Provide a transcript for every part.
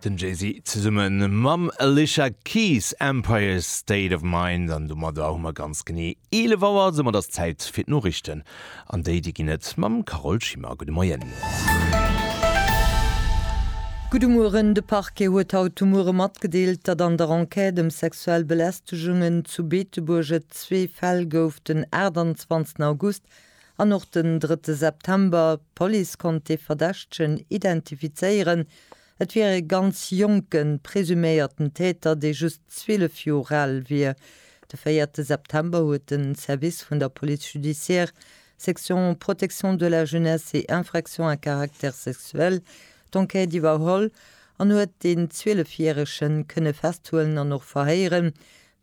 Den Jay-Z zesumme mam Alicia Keys, Empire State of Mind. An domadder hu mer ganz genee 11 Auer. Soumat ass Zäit fir d'Noriichten. An déi, déi ginn et mam Carole Schimmer. Gudde Moien. Gudde Mueren. De Parquet huet haut de Muere matgedeelt, datt an der Enquête ëm sexuell Belästegungen zu Beetebuerg et zwee Fäll gouf den 28 August An och den drëtte September, D'Police konnt de Verdächtegen identifizéieren. Et wier e ganz jonke presuméierten Täter, dee just 12 Joer al wier. De véierte September huet de Service vun der Police judiciaire, Section protection de la jeunesse et infractions à caractère sexuel, d'Enquête iwwerholl an huet deen 12 Järege kënne festhuelen an och verhéieren.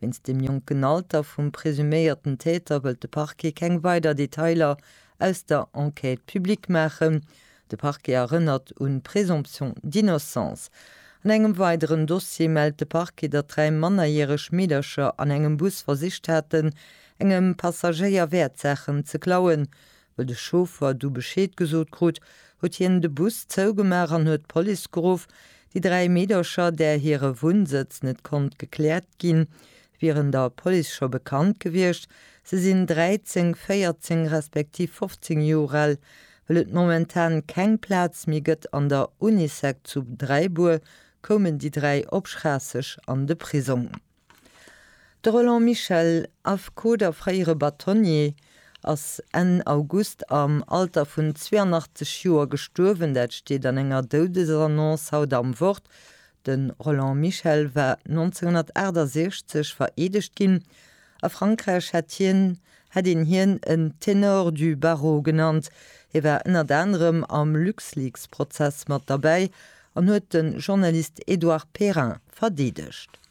Wéinst dem jonken Alter vum presuméierten Täter wëllt de Parquet keng weider Detailer aus der Enquête public maachen. De Parquet erënnert un d'Présomption d'innocence. An engem weideren Dossier mellt de Parquet, datt dräi mannerjäreg Meedercher an engem Bus versicht haten, engem Passagéier Wäertsaachen ze klauen. Wëll de Chauffer du Bescheed gesot krut, huet hien de Bus zougemaach an huet d'Police geruff. Déi dräi Meedercher, där hire Wunnsëtz net konnt gekläert ginn, wieren der Police scho bekannt gewiescht. Se sinn 13, 14 respektiv 15 Joer al. Wëll et momentan keng Plaz méi gëtt an der Unisec zu Dräibuer, koumen déi dräi op Schraasseg an de Prisong. De Roland Michel, Affekot a fréiere Batonnier, ass Enn August am Alter vun 82 Joer gestuerwen. Dat steet an enger Doudesannonce haut am Wort. De Roland Michel war 1968 vereedegt ginn. A Frankräich hätt hien hätt een hien en Ténor du barreau genannt. Hie war ënnert anerem am LuxLeaks-Prozess mat derbäi an huet de Journalist Edouard Perrin verdeedegt.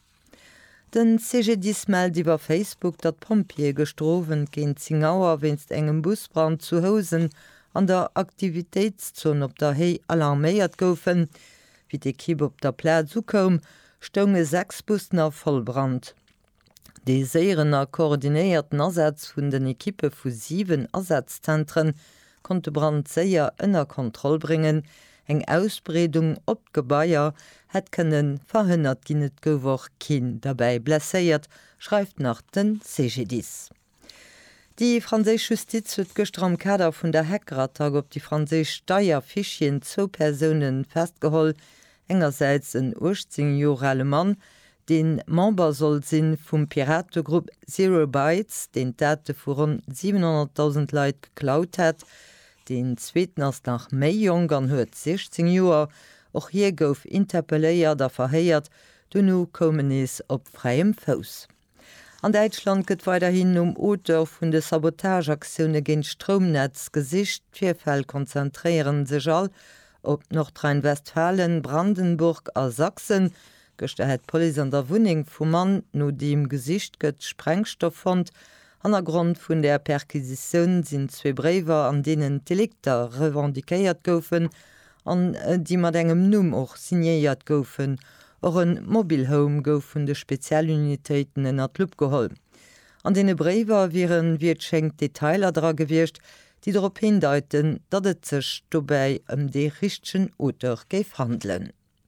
Den CGDIS mellt iwwer Facebook, datt d'Pompjeeë gëschter Owend géint 10 Auer wéinst engem Busbrand zu Housen an der Aktivitéitszon op der Héi alarméiert goufen. Wéi d'Ekipp op der Plaz ukoum, stounge 6 Bussen a Vollbrand. Dee séieren a koordinéierten Asaz vun den Ekippe vu 7 Asazzentre konnt de Brand séier ënner Kontroll bréngen, eng Ausbreedung op d'Gebaier hätt kënne verhënnert ginn, et gouf och keen derbäi blesséiert, schreift nach de CGDIS. Déi franséisch Justiz huet gëschter am Kader vun der Hackerattack op déi franséisch Steierfichieren zwou Persoune festgeholl, Engersäits en 18 Joer ale Mann, dee Member soll si vum Pirategrupp Zero Bytes, deen d'Date vu ronn 700.000 Leit geklaut hätt. Deen zweeten ass nach méi jonk an huet 16 Joer. Och hie gouf interpelléiert a verhéiert, dono koum en nees op fräiem Fouss. An Däitschland gëtt weiderhin nom Auteur vun de Sabotageaktioune géint d'Stroumnetz gesicht. D'Virfäll konzentréiere sech all op Nordrhein-Westfalen, Brandenburg a Sachsen. Gëschter hätt d'Police an der Wunneng vum Mann, no deem gesicht gëtt, Sprengstoff fonnt. Hannergrond vun der Perquisitioun sinn zwee Bréiwer, an deenen d'Delikter revendiquéiert goufen an déi mat engem Numm och signéiert goufen. Och e Mobile Home gouf vun de Spezialunitéiten ënner d'Lupp geholl. An deene Bréiwer wieren, wéi et schéngt, Detailer dra gewiescht, déi drop hindeiten, datt et sech dobäi ëm dee richtegen Auteur géif handelen.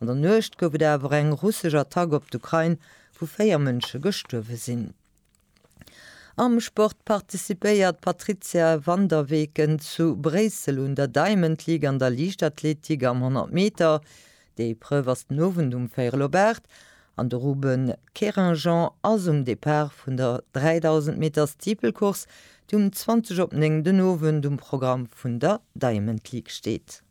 An der Nuecht gouf et awer eng russesch Attack op d'Ukrain, wou 4 Mënsche gestuerwe sinn. Am Sport participéiert d'Patrizia van der Weken zu Bréissel un der Diamond League an der Liichtathletik am 100 Meter. Déi Epreuve ass den Owend um véirel op 8 an de Ruben Keringjand ass um Depart vun der 3000 Meter Steeple-Course, déi um 20 op 9 den Owend um Programm vun der Diamond League steet.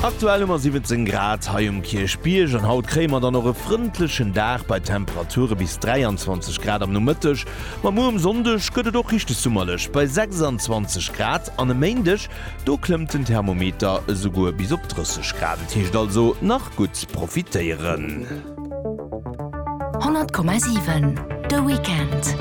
Aktuell hu mer 17 Grad hei um Kierchbierg an haut kréie mer dann och e frëndlechen Dag bei Temperature bis 23 Grad am Nomëtteg. Ma muer um Sonndeg gëtt et och richteg summerlech bei 26 Grad an e Méindeg do klëmmt den Thermometer esouguer bis op 30 Grad. Et heescht also nach gutt profitéieren. 100,7 de Weekend.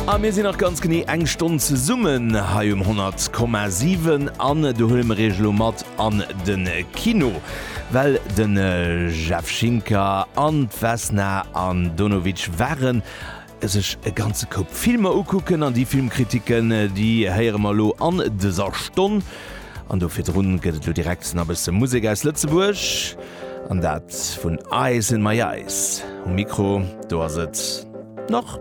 A mir sinn nach ganz genee eng Stonn zesummen hei um 100,7 an do huele mer Iech elo mat an de Kino, well de Jeff Schinker an d'Vesna Andonovic waren sech e ganze Koup Filmer ukucken an déi Filmkritiken, déi héiere mer elo an dëser Stonn. An do virdrun gëtt et elo direkt na bësse Musek aus Lëtzebuerg an dat vun Ice In My Eyes. Um Mikro do ass et nach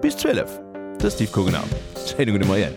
bis 12 de Steve Kogener. Schéine gudde Moien.